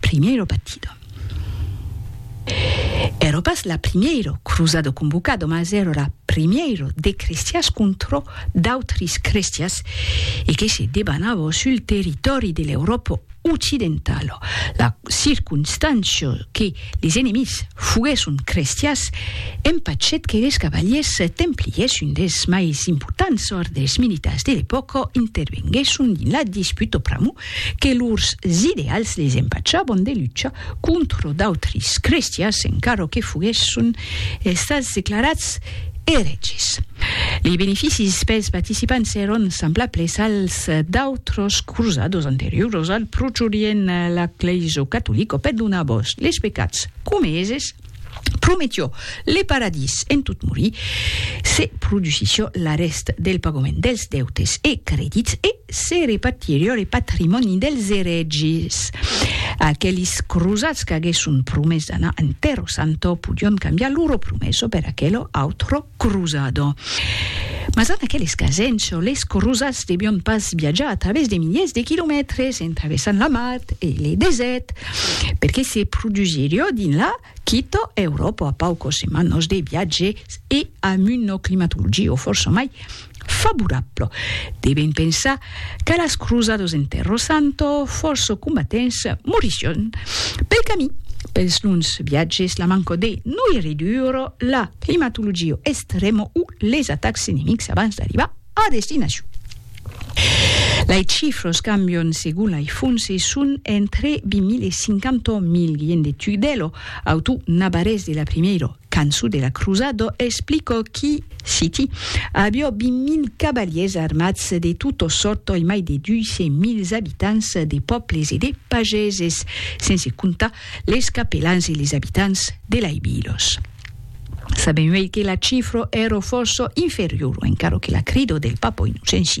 Primièro batido. Èro pas la primièro cruzado convocado, mas èro la primièro de crestias contrò d'autris crestias e que se debanavo sul territòri de l'Euròpo occidentalo. La circunstància que les enemics foguèsson crestias empachèt que les cavaliers templiers, un dels mais importants òrdes militars de l'epòca, intervenguèsson dins la disputa pr'amor que lors ideals les empachavan de lucha contra d'autris crestians encara que foguèsson estats declarats erètges. Lei beneficis pels participants èran semblables als d'autras crosadas anterioras al Proche-Orient, la Glèisa Catolica perdonava les pecats comeses, Prometió le paradís en tot morir, se produsissió l'arrèst del pagament dels deutes e credits e se repartirió le patrimòni dels erègis. Aquelis crosats qu'aguèsson promés d'anar en Terro Santo podión cambiar loro promesso per aquelo autro crosado. Mas en aqueles casens, les crosats devión pas viatjar a través de miliers de quilomètres, en travessant la mar e le desèrt, perque se produsirió dins la quito Euròpa a paucos semanos de viatge e amb una climatologia fòrça mai favorabla. Devem pensar qu'a las cruzados en Terro Santo fòrça combatents morission pel camí. Pels longs viatges, la manca de noirridura, la climatologia estrèma o les atacs enemics abans d'arribar a destinacion. Lei chifros cambion segon lei fonts e son entre 20.000 e 50.000 gien de Tugdelo, auto navarrés de la primeiro canço de la crusado, explicò qui, citi, avió 20.000 cavaliers armats de tota sòrta e mai de 200.000 abitants de pòbles e de pageses, sense comptar les capelans e les abitants de lei vilos. Sabem uèi que la cifra èra fòrça inferiora, encara que la crida del papa Innocenci